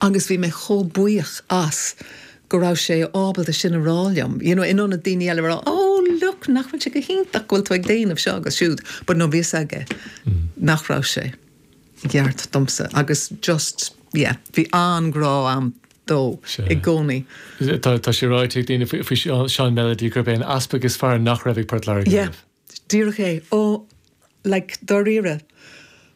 agus bhí mé chomh buíoch as go raibh sé ábalta sin a rá liom you know in ionad daoine eile a rá oh look nach bhfuil sé go hiontach go bhfuil tú ag déanamh seo agus siúd but no bhí fhios aige nach raibh sé i gceart domsa agus just yeah bhí an-grá a'm dó i gcónaí. Tá sé ráite ag daoine faoi Seán Melody gurb é an easpag is fearr nach raibh ag Port Láirge riamh. Yeah. Díreach é. Ó, like, dáiríre,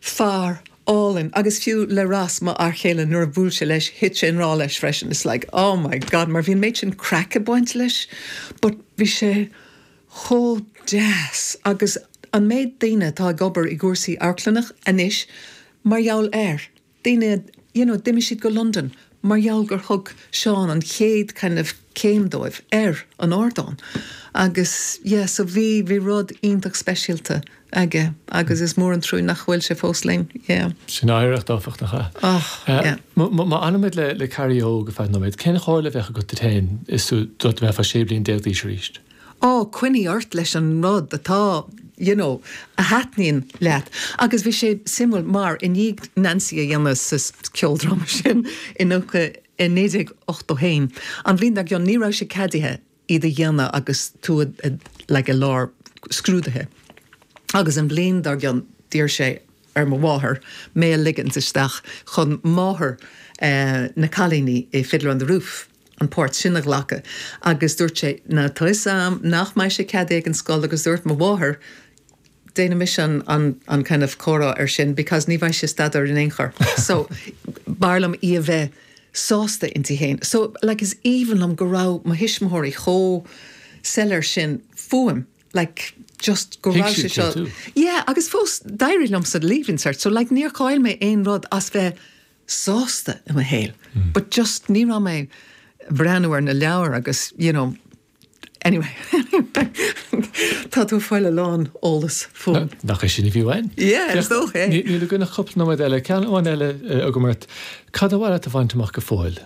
fear álainn, agus fiú le Ross, mo fhear chéile, nuair a bhuail sé leis, thit sé i ngrá leis freisin, it's like, oh my God, mar bhí an méid sin craic ag baint leis, but bhí sé chomh deas, agus an méid daoine atá ag obair i gcúrsaí amharclainne anois mar gheall air, daoine, you know, d'imigh siad go Londain mar gheall gur thug Seán an chéad kind of céim dóibh ar an ardán agus yeah so bhí, bhí rud iontach speisialta aige agus is mór an trua nach bhfuil sé fós linn, yeah. Sin oidhreacht áfach nach ea? Oh, yeah. Má fhanaimid le Carrie Óg ar feadh nóiméad, cén chomhairle a bheadh agat duit féin is tú, dá mbeifeá 16 bliain d'aois arís? Á, coinnigh ort leis an rud atá, you know, a thaitníonn leat. Agus bhí sé suimiúil mar, i ndiaidh Nancy a dhéanamh sa cheoldráma sin i 1981, an bhliain dar gcionn, ní raibh sé ceadaithe iad a dhéanamh agus tú like i lár scrúduithe. Agus an bhliain dar gcionn, d'iarr sé ar mo mháthair mé a ligint isteach chun máthair na gcailíní i Fiddler on the Roof, an pháirt sin a ghlacadh agus dúirt sé leo toisc am nach mbeadh sé ceadaithe ag an scoil agus dúirt mo mháthair déanaimis an an an kind of comhrá ar sin because ní bheidh sí ag staidéar in aon chor so b'fhearr liom í a bheith sásta inti féin so like is aoibhinn liom go raibh mo thuismitheoirí chomh soiléir sin fúm like just go raibh sé seo yeah agus fós d'éirigh liom sa Leaving Cert so like níor chaill mé aon rud as bheith sásta i mo shaol but just ní raibh mé ag breathnú ar na leabhair agus you know anyway tá tú ag fáil a lán eolas fúm. Nach é sin a bhí uainn? Yeah, is dócha é. Níl againn ach cúpla nóiméad eile, ceann amháin eile agam ort, cad ba mhaith leat a bhaint amach go fóill?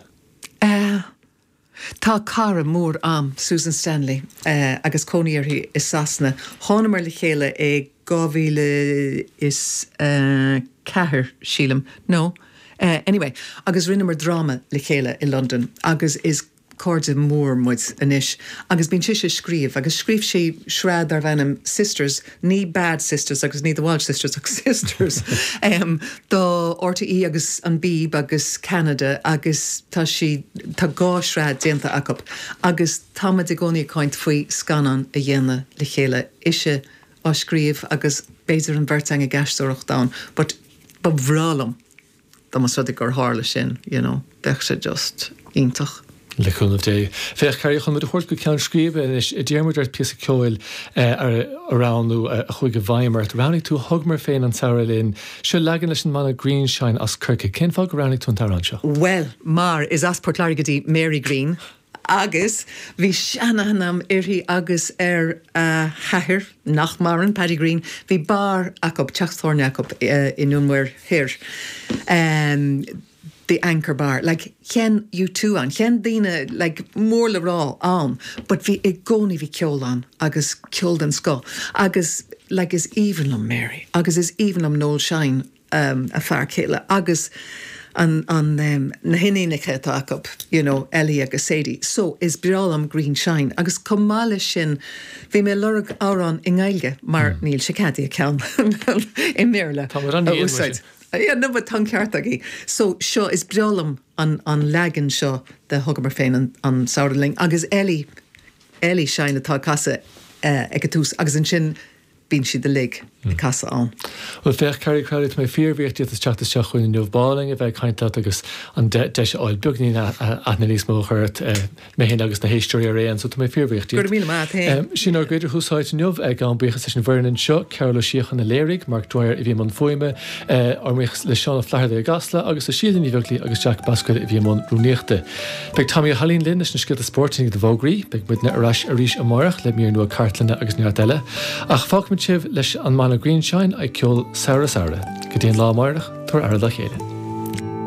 Tá cara mór a'm, Susan Stanley, agus cónaí uirthi i Sasana. Thánamar le chéile i dhá mhíle is a ceathair, sílim, nó anyway, agus rinneamar dráma le chéile i Londain agus is cairde mór muid anois. Agus bíonn sise ag scríobh, agus scríobh sí sraith darbh ainm Sisters, ní Bad Sisters agus ní The Walsh Sisters ach Sisters, do RTÉ agus an Beeb agus Ceanada agus tá sí, tá dhá shraith déanta acu agus tá muid i gcónaí ag caint faoi scannán a dhéanamh le chéile, ise á scríobh agus b'fhéidir an bheirt againn ag aisteoireacht ann but ba bhreá liom. Dá mba rud é gur tharla sin, you know, bheadh sé just iontach. Le cúnamh Dé. Féach, Carrie, chun muid a thabhairt go ceann scríbe anois, d'iarr muid ort píosa ceoil a roghnú a chuaigh i bhfeidhm ort. Roghnaigh tú 'Thugamar Féin an Samhradh Linn'. Seo leagan leis an mbanna Greenshine as Corcaigh. Cén fáth go roghnaigh tú an t-amhrán seo? Bhuel, mar is as Port Láirge di Mary Greene. agus bhí sean-aithne a'm uirthi agus ar a hathair, nach maireann, Paddy Greene, bhí beár acu, teach tábhairne acu i nDún Mór Thoir, The Anchor Bar, like sheinn U2 ann, sheinn daoine like mór le rá ann but bhí, i gcónaí bhí ceol ann agus ceol den scoth agus like is aoibhinn liom Mary agus is aoibhinn liom Noel Shine. a fear céile agus an, na hiníonacha atá acu, you know, Ellie agus Sadie. So, is breá liom Greenshine agus chomh maith leis sin bhí mé ag lorg amhrán i nGaeilge mar níl sé ceadaithe ceann i mBéarla a úsáid. Yeah, no but tá an ceart agaibh. So, seo, is breá liom an leagan seo de Thugamar Féin an Samhradh Linn agus Ellie, Ellie Shine atá ag casadh ag an tús agus ansin Bíonn siad uilig ag casadh ann. Bhuel, féach, Carrie Crowley, tá mé fíorbhuíoch díot as teacht isteach chugainn inniu. B'álainn a bheith ag caint leat agus an deis a fháil beagainín aithne níos mó a chur ort, mé féin agus na héisteoirí araon, so tá mé fíorbhuíoch díot. Go raibh míle maith a't fhéin. Sin ár gcuid ar Thús Áite inniu, gabhaim buíochas leis an bhfoireann anseo, Cearbhall Ó Síocháin a léirigh, Mark Dwyer a bhí i mbun fuaime, ár mbuíochas le Seán Ó Flatharta i gCasla, agus le Síle Ní Bheaglaoí agus Jack Basquel a bhí i mbun rúnaíochta. Beidh Tommy Ó hAilín linn leis na scéalta spóirt i ndiaidh na bhfógraí. Beidh muidne ar ais arís amárach le mír nua cartlainne agus neart eile. Ach fágfaimid sibh leis an mbanna Greenshine ag ceol 'Samhradh Samhradh'. Go dtí an lá amárach, tabhairigí aire dá chéile.